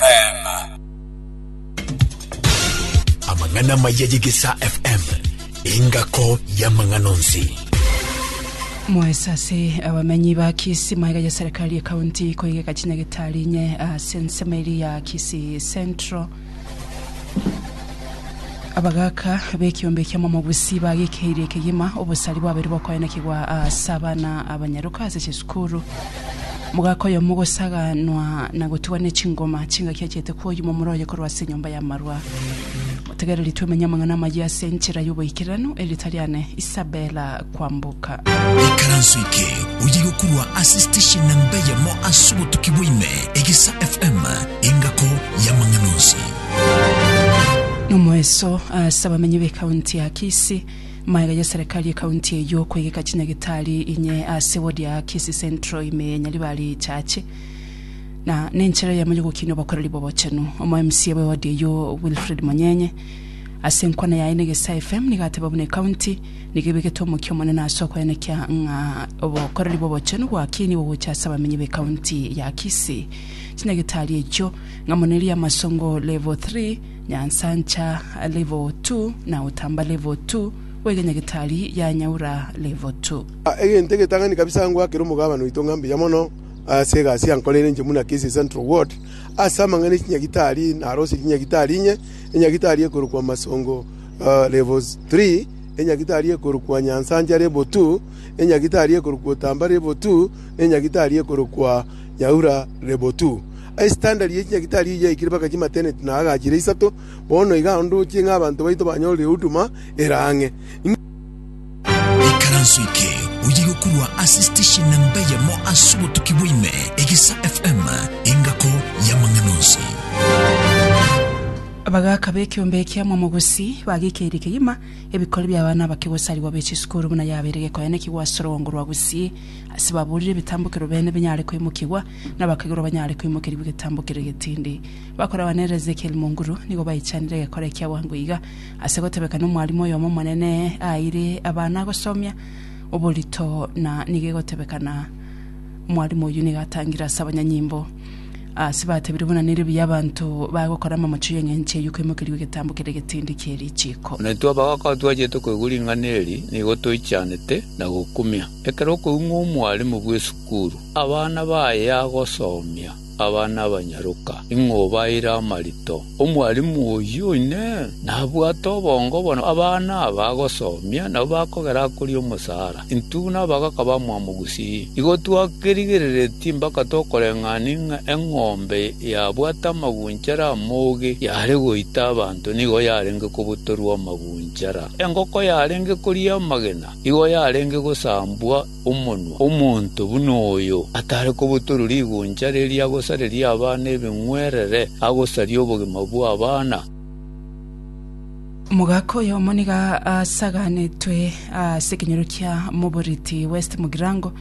FM. Amang'ana amaya y'Egesaa FM, engako y'amang'ana onsi. mwaesase abamenyi ba kisi maega ya serikali ya kaunti koigeka chinyagitari inye ase ensemo eri ya kisi central Abagaaka b'ekiombe ki'amamobusii bagekeirie ekegima obosari bwabere bokoenekigwa ase abana abanyaroka ase chisukuru. Mogaaka oyomo ogosaganwa na gotugwa ne chingoma chingaki achiete koyuma omoro oye korwa ase enyomba y'amarwa. Motegereri twemenye amang'ana amayia ase enchera y'oboikeranu, erita riane Isabella Kwamboka. Ikaranso eke oye gokurwa ase station namba eyemo ase obotuki bwaime, Egesa FM, engako y'amang'ana onsi. Nomoeso ase abamenyi b'ekaunti ya Kisii, magega ya serikali y'ekaunti eyio kwegeka chinyagitari inye ase wodi ya Kisii Central ime ya Nyaribari Chache na nenchera eyemo y'ogokinia obokoreri bw'obochenu. Omo MCA bwe wodi eyio Wilfred Monyenye ase enkwana yaye na Egesae FM nigo ateba buna ekaunti nigo ebegete omokia omonene ase okoenekia ng'a obokoreri bw'obochenu bwakinigwe gocha ase abamenyi b'ekaunti ya Kisii. Chinyagitari echio Ng'amoneria amasongo level three, nyansancha level two, na otamba level two, bw'egenyagetari ya Nyaura level two. Egento egetang'ani kabisa ngwakere omogabane oito ng'a mbuya mono ase egasi yankoreire inche buna Kisii Central Ward. Ase amang'ana e chinyagitari narosirie chinyagitari inye, enyagitari ekorokwa Masongo level three, enyagitari ekorokwa Nyansancha level two, enyagitari ekorokwa Otamba level two, na enyagitari ekorokwa Nyaura level two. Estandari ye chinyagitari eyio yaikire mpaka chimateneti na agachire isato. Bono iga ndoche ng'a abanto baito banyorire huduma ere ang'e. Ikaranso eke oye gokorwa ase station namba eyemo ase obotuki bwa ime, Egesa FM, engako y'amang'ana onsi. Abagaaka b'ekeombe ekia Mwamo Gusii bagekeire kegima ebikori bi'abana abake gosarigwa be chisukuru buna yabeire gekoenekigwa ase orogoogo rwa Gusii ase baburire ebitambokero bene binyare koimokigwa Nabakegurwa banyare koimokerigwa egetambo keria getindi. Bakore abana ere Ezekieli Munguru nigo baichanire egekora ekia bwango iga, ase gotebeka nomwalimu oyomo omonene aeire abana agosomia oborito na nigo egotebeka na mwalimu oyio nigo atangire ase abanyanyimbo. Ase batebire buna nerio buya abanto baye gokora amamochio y'eng'encho eyio koimokerigwa egetambo keria getindi kie richiiko. Naintwe abagaaka twachete koigwa ring'ana eri nigo toichanete na gokumia. Ekero okoigwa ng'a omwalimu bw'esukuru. Sukuru, abana baye agosomia abana abanyaroka, ing'o obaeire amarito? Omwalimu oyio inee! Nabwate obongo bono abana aba agosomia nabo bakogera akoria omosaara? Intwe buna abagaka bamwabo gusii? Igo twakerigereretie mpaka tokoreng'ania ng'a eng'ombe yabwate amagunchara amoge yare goita abanto nigo yarenge kobutorwa amagunchara, engoko yarenge koria amagena nigo yarenge gosambwa, omonwa omonto buna oyo, atare kobotorwa riguncha riria agosareria abana ebing'werere, agosaria obogima bw'abana. Omogaka oyomo nigo asaganetwe ase ekenyoro kia moboreti West Mugirango,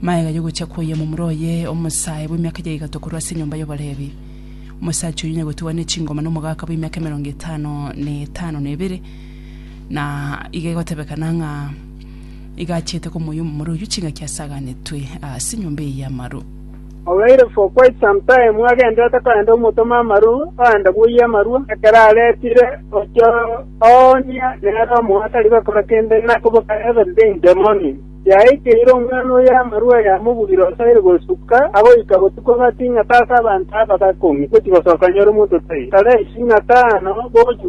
magega y'ogocha kwoyia omomura oye omosae bw'emiaka ya igato korwa ase enyomba y'oborebi. Omosacha oyio nyagotigwa ne chingoma nomogaka bw'emiaka emerongo etano na etano na ebere, na iga egotebekana ng'a Igachiete komoyia omomura oyio chingaki asaganetwe ase enyomba eye y'amaru. Obeire for quite some time agenderete korenta omotoma amaru orente bwoyia amarwa, ekero aretire gochia oonia nere omoyo atari gokora kende na koboka every day in the morning. Yaikeire omwana oyo amarwa yamobuire osoiri gosuka agoika botuko but ing'ata ase abanto aba bakong'ia gochia gosoka nyore omonto tai. Tara ising'ata ano bogochia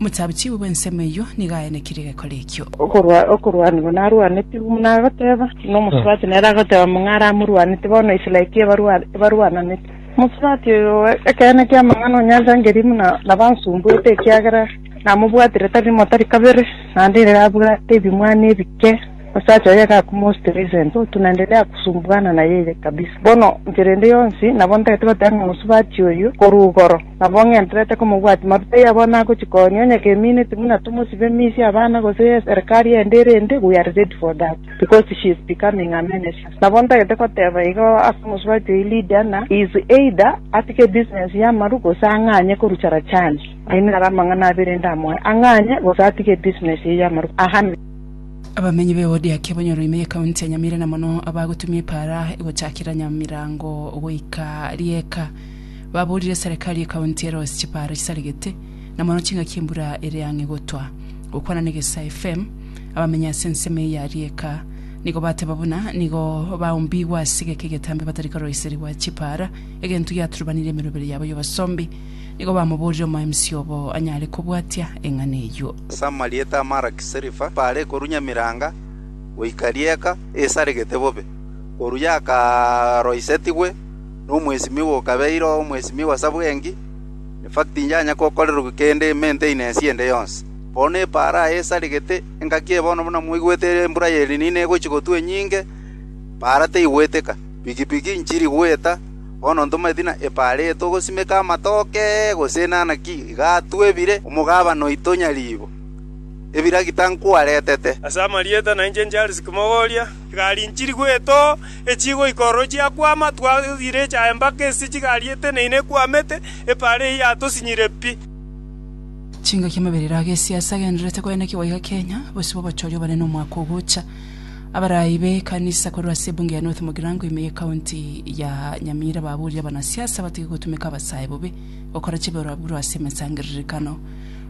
Omosabichibu bw'ensemo eyio nigo aenekirie egekori ekio. Okorwa- okorwanigwa narwanetigwe buna agoteba, buna omosubati nere agoteba mong'ara amorwanete, bono Israel ki ebarwa- ebarwananete. Omosubati oyo ekeene ki'amang'ana onyanchangeri buna nabansumbwete, ekiagera namobwatire tari rimo tari kabere, naende nere abwate ebimwana ebike. Osacha oye gakuma ositera isento otu, naende riagosumbugana na yeye kabisa. Bono enchera ende yonsi nabo ntagete goteba ng'a mosubachi oyio korwa igoro, nabo ng'enterete komobwatia maruta iye abwo nagochia konya, onye kemineti buna tomosibe misia abana gose eserikari ende erinde, we are ready for that, because she is becoming a menace. Nabo ntagete goteba igo ase omosubachi oyio Lydia ng'a he is either atige ebusiness y'amaru gose ang'anye korucha Rachani. Ayio naro amang'ana abere ndamoe, ang'anye gose atige ebusiness eye y'amaru. Amen. Abamenyi b'Eodiakia banyora ime y'Ekaunti ya Nyamira na mono abagotumia epaara egochakera Nyamirango goika rieka, baboorire Serekari y'Ekaunti ere ase chipaara chisaregete na mono chingaki embura ere ang'e gotwa. Gokwana n'Egesa FM, abamenyi ase ensemo eye ya rieka nigo bateba buna nigo baombigwe ase egeka egetambe batari koroiserigwa chipaara, egento giaturubanire emerobere yabo y'obosombi. Nigo bamoborire omoemisi obo anyare kobwatia eng'ana eyio. Ase amarieta a Maraki Serifa baare korunya emeranga goika rieka esaregete bobe, korwa yakaroisetigwe nomwesimigwa okabeire omwesimigwa ase bwengi, effect tinyaanya kokorerwa kende maintenance ende yonsi. Bono epaaro aya esaregete engaki eye bono buna moigwete ere embura y'Elinino egochi gotwa enyinge, paara teigweteka, piki piki nchiri gweta, Bono ntomaeti na epareto ogosimeka amatoke, gose enana ki gatwebire omogabane oito nyariibo, ebiragita nkwaretete? Ase amarieta na inche Charles Kimogoria, egari nchiri goeta oo, echie goika ororo chiakwama, twaire echaye mpaka ase chigari eteneine ekwamete, epara eyio yatosinyire pi. Chingaki amaberero a gesiasa agendererete koenekigwa iga Kenya, bosio bw'obochoria obonene omwaka ogocha. Abarai b'ekanisa korwa ase ebunge ya North Mugirango ime ye county ya Nyamira baburia abanasiasa batige gotumeka abasae bobe gokora chiborwaborwa ase emesangererekano.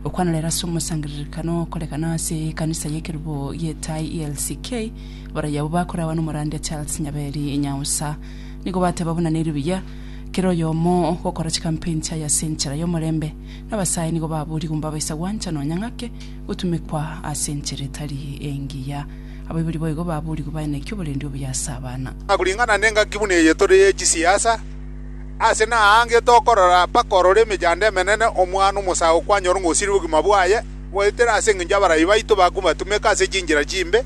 Gokwana rero ase omosangererekano okorekana ase ekanisa y'ekerubo gi'etai ELCK, abarai abwo bakorawa n'omorandia Charles Nyaberi Nyausa. Nigo bateba buna neri buya kera oyomo gokora chikampeni chiaye ase enchera y'omorembe. Nabasae nigo baburia gumbabaisa gwancha nonya ng'ake Gotumekwa ase enchera etari engiya. Abaibori boigo baboorigwe bae naki oborendi obuya ase abana. Koring'ana nengaki buna eye tore ye chisiasa, aase naange tokorora mpaka ororo emechando emenene omwana omosago kwanyora ng'a osirie obogima bwaye, goetera ase engencho abarai baito bakobatumeka ase chinchera chimbe,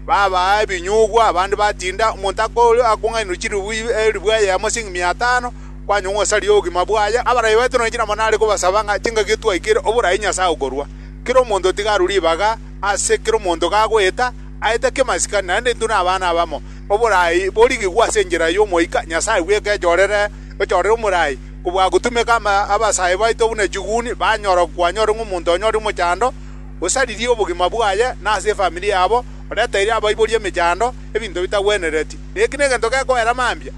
babaa ebinyugwa, abande batinda, omonto akore akong'ainerwa chiribu eriribu eyemo as'eng'imia atano, kwanyong'wa ase aria obogima bwaye, abarabia baito nonya chiramani are kobasaba ng'a chingaki etwaikire oboraai Nyasae okorua. Kera omonto tiga arue ribaga ase kera omonto gagoeta, aete kemasikani naende intwe nabana abamo. Oboraai borigigwe ase enchera y'omoika Nyasae bw'ekechorere, ochorere omoraai, kobua gotumeka ama abasae baito buna chiguni, banyora kwanyore ng'a omonto onyore omochando, osaririe obogima bwaye na ase efamiri yabo, oretere abaiboria emechando, ebinto bitagwenereti. Na eki negento gekoera mambia.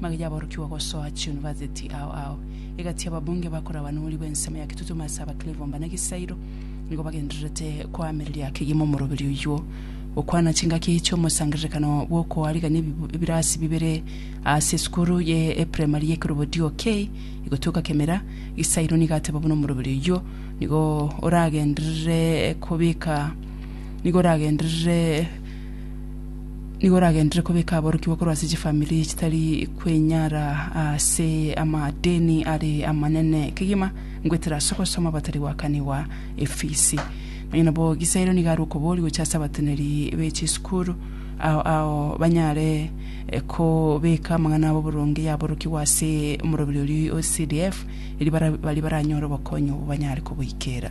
Magega y'aborokigwa gosoa chiunivasiti ao ao egati y'ababunge bakore abanuri bw'ensemo ya Kitutumo ase Abaklevo mbana egesairo nigo bagendererete koamereria kegima omoroberi oyuo gokwana chingaki chi'omosangererekano bw'okoarigania ebirasi bibere ase esukuru y'epremari y'ekerobodio kei igotueka kemera. Gisairo nigo ateba buna omoroberi oyuo nigo oragenderere kobeka nigo oragenderere Nigo oragenderere kobeka aborokigwa korwa ase chifamiri chitari kwenyara ase amadeni are amanene. Kegima ngoetera ase ogosoma abatari goakanigwa efisi. Nonya nabo Gisairo nigo are okobori gochia ase abateneri be chisukuru ao ao banyare eh, kobeka amang'ana abo boronge yaborokigwa ase omoroberi oria o CDF, erio bara- baria baranyore obokonyi obo banyare koboikera.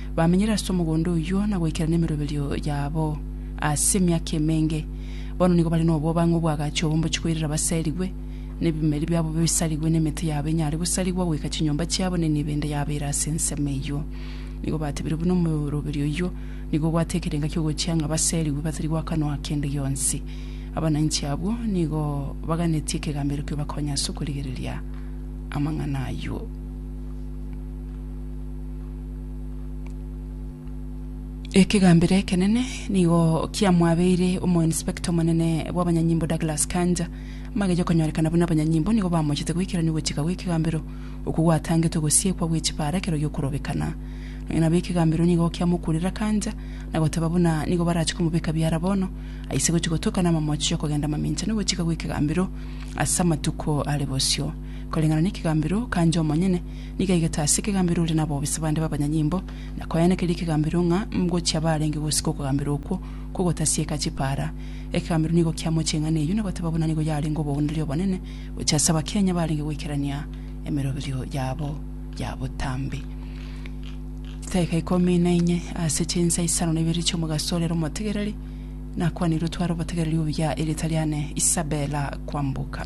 Bamenyire ase omogondo oyio na goikerana emeroberio yabo ase emiaka emenge. Bono nigo bare nobobang'u obw'agacha obombochi koirera baserigwe, na ebimeri biabo bisarigwe, na emete yabo enyare gosarigwa goika chinyomba chiabo, na enibo ende yabo ere ase ensemo eyio. Nigo batebire buna omeroberio oyio nigo obwate ekerenga ki'ogochia ng'a baserigwe batari gwakanwa kende gionsi. Abananchi abwo nigo baganetie ekegambero kio bakonya ase okorigereria amang'ana ayio. Ekegambero ekenene nigo kiamwabeire omoinspector omonene bw'abanyanyimbo Douglas Kanja. Magaicho konyorekana buna abanyanyimbo nigo bamochete goikerania ogochika gw'ekegambero okwo gwatangete ogosiekwa gwe chipara ekero giokorobekana. Nonya nabo ekegambero nigo kiamokurera Kanja na goteba buna nigo barache komobeka biara bono aise gochi gotoka namamochi yokogenda mamincha nogochika gw'ekegambero ase amatuko are bosio. Koreng'ana nekegambero Kanja omonyene Nigo aigete ase ekegambero ore nabobisa bande b'abanyanyimbo, na koeanekeria ekegambero ng'a ngochia barenge gosika okogambera okwo kw'ogotasieka chipaara. Ekegambero nigo kiamochia eng'ana eyio na goteba buna nigo yarenge obogoonderia obonene gochia ase Abakenya barenge goikerania emeroberio yabo ya botambe. Chidaeka ikomi na inye ase chinsa isano na ibere chi'omogaso ore omotegereri, nakwanire otware obotegereri obuya erieta riane Isabella Kwamboka.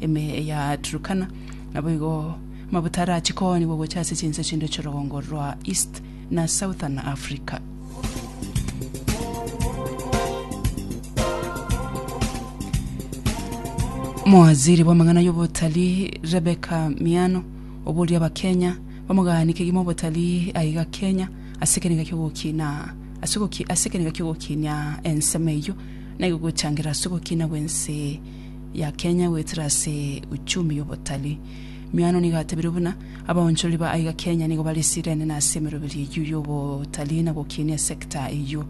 ime ya Turkana. Naboigo amabuta arachie koonigwa gocha ase chinse chinde chi'orogongo rwa East na Southern Africa. Omowaziri bw'amang'ana y'obotari Rebecca Miano oboria Abakenya bamoganie kegima obotari aiga Kenya ase ekerenga ki'ogokina ase ogoki- ase ekerenga ki'ogokinia ensemo eyio naigo gochangira ase ogokina gw'ense ya Kenya goetera ase uchumi y'obotari. Miano nigo atebirie buna abaonchorori ba aiga Kenya nigo barisirene na ase emeroberi eyio y'obotari na gokinia esector eyio.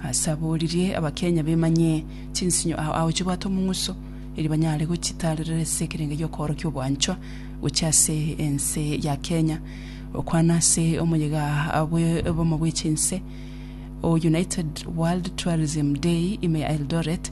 Ase aboririe abakenya bemanye chinsinyo ao ao chibwate omong'uso eri banyare gochitarerera ase ekerengo gi'okoorokia obwanchwa gochia ase ense ya Kenya. Okwana ase omoyega bwe obomo bwe chinse o United World Tourism Day ime ya Eldoret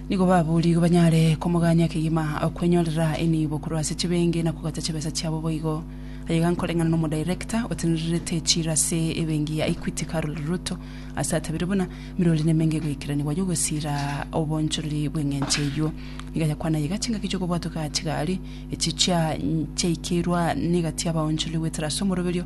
Nigo baboorigwe banyare komogania kegima okwenyorera enibo korwa ase chibeenge na kogata chibesa chiabo boigo. Aye iga nkoreng'ana n'Omodirector otenererete echiira ase ebenki ya Equity Carol Ruto ase atabire buna, Emerori nemenge egoikeranigwa y'ogosiira obonchorori bw'eng'encho eyio. Nigo ayakwana aye iga chingaki chi'okobwatoka chigari, echi chiaikeirwa negati y'abaonchorori goetera ase omoroberio,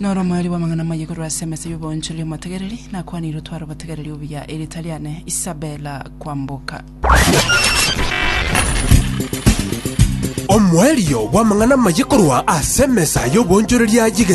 Noromweri bw'amang'ana amaye korwa ase emesa y'oboonchori omotegereri, nakwanirwe tware obotegereri obuya, erieta riane Isabella Kwamboka. Omwerio bw'amang'ana amaye korwa ase emesa y'oboonchoreria y'egesaku.